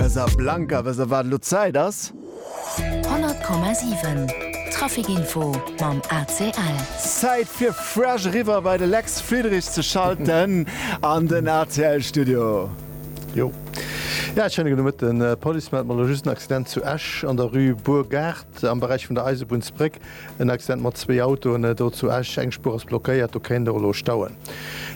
Besser blanker, wëss der wat elo Zäit ass? 100,7 Trafic info mam ACL. Zäit fir fresh eriwwer bei de Lex Friedrich ze schalten an den ACL Studio. Jo ja ech hënnegen um Mëtten. D'Police mellt mer elo just en Accident zu Esch an der Rue Burgard am Beräich vun der Eisebunnsbréck. En Accident mat zwee Autoen do zu Esch. Eng Spuer ass blockéiert, do kéint och elo stauen.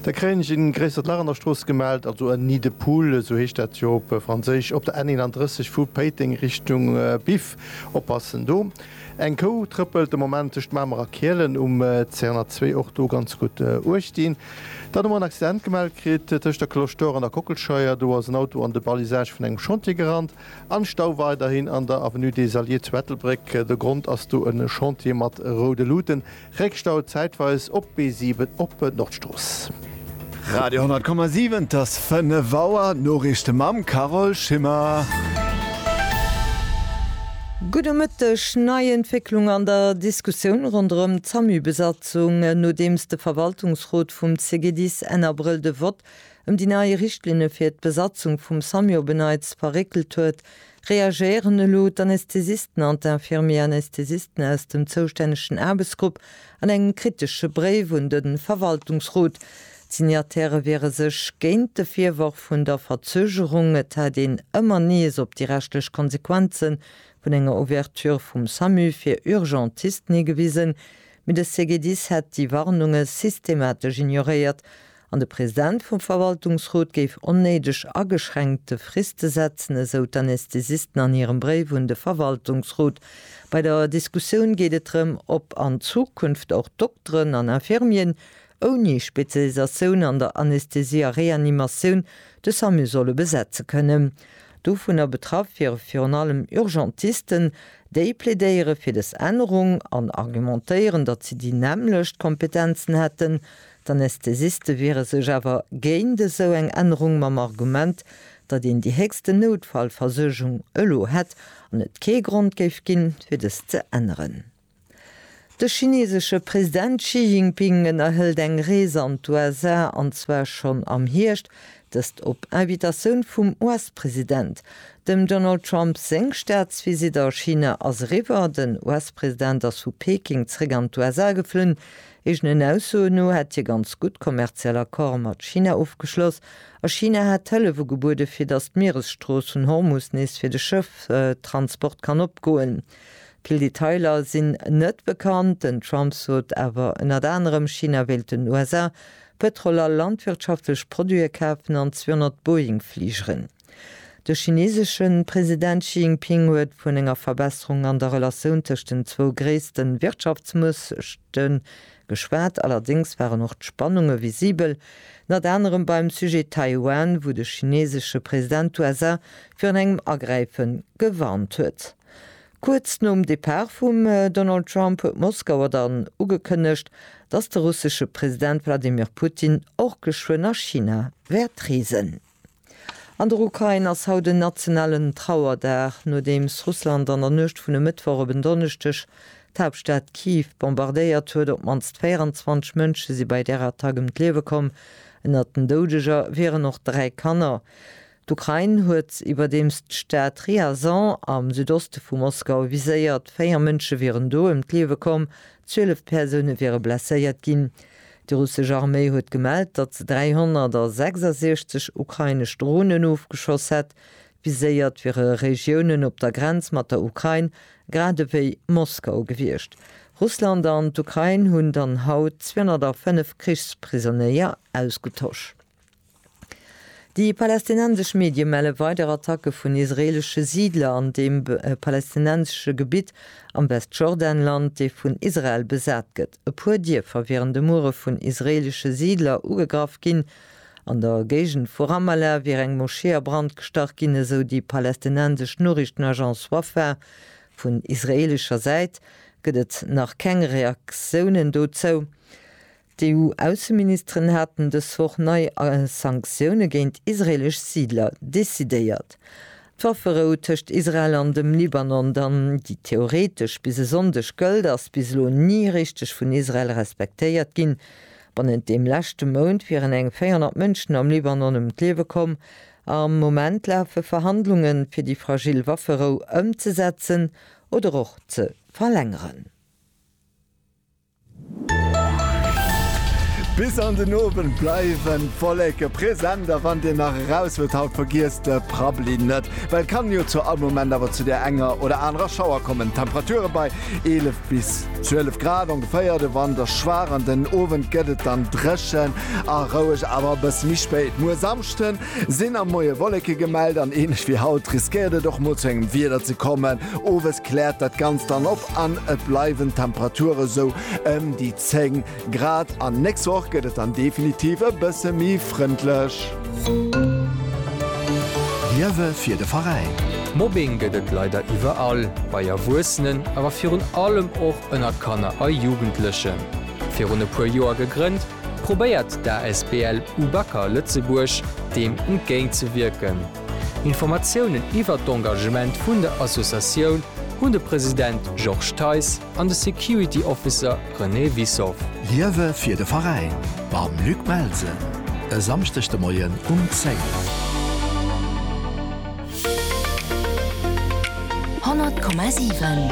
Da kréien ech en gréissert Lach an der Strooss gemellt, also en nid de poule, esou heescht dat jo op Franséisch, op der N 31 vu Péiteng Richtung Biff. Oppassen do, eng Kou trëppelt de Moment tëscht Mamer a Kielen um C 102. Och do ganz gutt Uecht dinn. Dann hu mer en Accident gemellt kritt tëscht der Cloche d'Or an der Kockelscheier. Do ass en Auto an de Balisage vun engem Chantier gerannt. An Stau weiderhin an der Avenue des Alliés zu Ettelbréck. De Grond ass do en Chantier mat roude Luuten. Réckstau zäitweis op d'B7 op Nordstrooss. Radio 100,7 't ass 5 Auer, d'Noriichte mam Carole Schimmer. Gudde Mëtteg. Nei Entwécklung an der Diskussioun ronderëm d'SAMU-Besatzung, nodeems de Verwaltungsrot vum CGDIS Enn Abrëll de Vott ëm déi nei Richtlinne fir d'Besatzung vum Samio Benneitz verréckelt huet, reagéieren elo d'Anästhesisten an d'Infirmier-Anästhesisten aus dem zoustännegen Aarbechtsgrupp an engem kritesche Bréif un de Verwaltungsrot. D'Signataire wiere sech géint de Virworf vun der Verzögerung, et hätt een ëmmer nees op déi rechtlech Konsequenze vun enger Ouverture vum Samu fir Urgentisten higewisen, mee de CGDIS hätt déi Warnunge systematesch ignoréiert An de President vum Verwaltungsrot géif onnéideg ageschränkte Friste setzen, esou d'Anästhesisten an hirem Bréif un de Verwaltungsrot. Bei der Diskussioun geet et drëm, ob an Zukunft och Dokteren an Infirmieren ouni Spezialisatioun an der Anästhesie a Reanimatioun de Samu solle besetze kënnen. Dovunner betraff wiere virun allem Urgentisten. Déi plädéiere fir des Ännerung an argumentéieren, datt si déi nämmlecht Kompetenzen hätten, D'Anästhesiste wiere sech awer géint esou eng Ännerung mam Argument, datt een déi héchsten Noutfallversuergung elo hätt an et kee Grond géif ginn, fir dëst ze änneren. De chinesesche President Xi Jinping ënnerhëlt eng Rees an d'USA, an zwar schonn am Hierscht, dëst op Invitatioun vum US-President. Dem Donald Trump seng Staatsvisitt a China ass eriwwer. Den US-President ass vu Peking zeréck an d'USA geflunn, Eegenen Aussoen no hätt hie ganz gutt kommerziell Accorde mat China ofgeschloss a China hätt Hëllef ugebuede fir datt d'Mieresstrooss vun Hormus nees fir de Schëfftransport kann opgoen. Vill Detailer sinn net bekannt. Den Trump sot awer ënnert anerem, China wéilt den USA Pëtrol a landwirtschaftlech Produite kafen an 200 Boeing-Fligeren. De chineesesche President Xi Jinping huet vun enger Verbesserung an der Relatioun tëscht den zwou gréisste Wirtschaftsmuechte geschwat. Allerdéngs waren och d'Spannunge visibel, ënnert anerem beim Sujet Taiwan, wou de chineesesche President d'USA virun engem Agräife gewarnt huet. Kuerz nom Depart vum Donald Trump huet Moskauer dann ugekënnegt, datt de russesche President Wladimir Putin och geschwënn a China wäert reesen. An der Ukrain ass haut en nationalen Trauerdag, nodeems Russland an der Nuecht vun e Mëttwoch op en Donneschdeg d'Haaptstad Kiew bombardéiert huet. Op d'mannst 24 Mënsche si bei där Attack ëm d'Liewe komm. Ënnert den Doudeger wieren och dräi Kanner. D'Ukrain huet iwwerdeems d'Stad Ryazan am Südoste vu Moskau viséiert. Véier Mënsche wieren do ëm d'Liewe komm, zwielef Persoune wiere blesséiert ginn. Déi russesch Arméi huet gemellt, datt se 366 ukrainesch Dronen ofgeschoss hätt. Viséiert wiere Regiounen op der Grenz mat der Ukrain, grad ewéi Moskau gewiescht. Russland an d'Ukrain hunn dann haut 205 Krichsprisonnéier ausgetosch. Déi palästinensesch Medie melle weider Attacke vun israeelesche Siidler an deem palästinensesche Gebitt am Westjordanland, dee vun Israel besat gëtt. E puer Dierfer wieren de Muere vun israeelesche Siidler ugegraff ginn. An der Géigend vu Ramallah wier eng Moschee a Brand gestach ginn, esou déi palästinensesch Noriichtenagence Wafa. Vun israeelescher Säit gëtt et nach keng Reaktiounen dozou. D'EU-Ausseministeren haten dës Woch nei Sanktioune géint israeelesch Siidler decidéiert. D'Wafferou tëscht Israel an dem Libanon, dann, déi theoretesch bis e Sonndeg gëllt, ass bis elo ni richteg vun Israel respektéiert ginn. Bannent deem leschte Mount wieren eng 400 Mënschen am Libanon ëm d'Liewe komm. Am Moment lafe Verhandlungen, fir déi fragil Wafferou ëmzesetzen oder och ze verlängeren. Bis an den Owend bleiwen d'Wolleke present a wann Dir nach eraus wëllt haut, vergiesst de Prabbli net, well et kann jo zu all Moment awer zu der enger oder anerer Schauer kommen. Temperature bei 11 bis 12 Grad ongeféier, de Wand ass schwaach an den Owend gëtt et dann dréchen a roueg, awer e bësse méi spéit. Muer Samschde sinn am Moie Wolleke gemellt an änlech wéi haut riskéiert et och mol zu engem Wieder ze kommen. Owes kläert dat Ganzt dann op. an et bleiwen d'Temperature sou ëm déi 10 Grad an d'nächst Woch gëtt et dann definitiv e bësse méi frëndlech. Liewe fir de Veräin! Mobbing gëtt et leider iwwerall, bei Erwuessenen, awer virun allem och ënner Kanner a Jugendlechen. Virun e puer Joer gegrënnt, probéiert d'Asbl Ubacker Lëtzebuerg deem entgéintzewierken. Informatiounen iwwert d'Engagement vun der Associatioun hunn de President Georges Theis an de Security Officer René Wissow. Liewe fir de Veräin mam Luc Belsen e Samschdeg de Moien um 10. Honnert Komma siwen,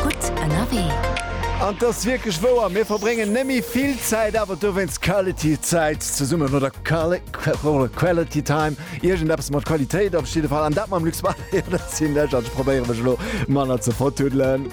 gutt ënnerwee. An et ass wierklech wouer, mir verbréngen nemme vill Zäit, awer dowéinst quality Zäit zesummen, oder quali. Quality time, iergend eppes mat Qualitéit op jidde Fall. An dat mam Luxmatic, dat sinn ech an ech probéiere mech elo manner ze vertuddelen.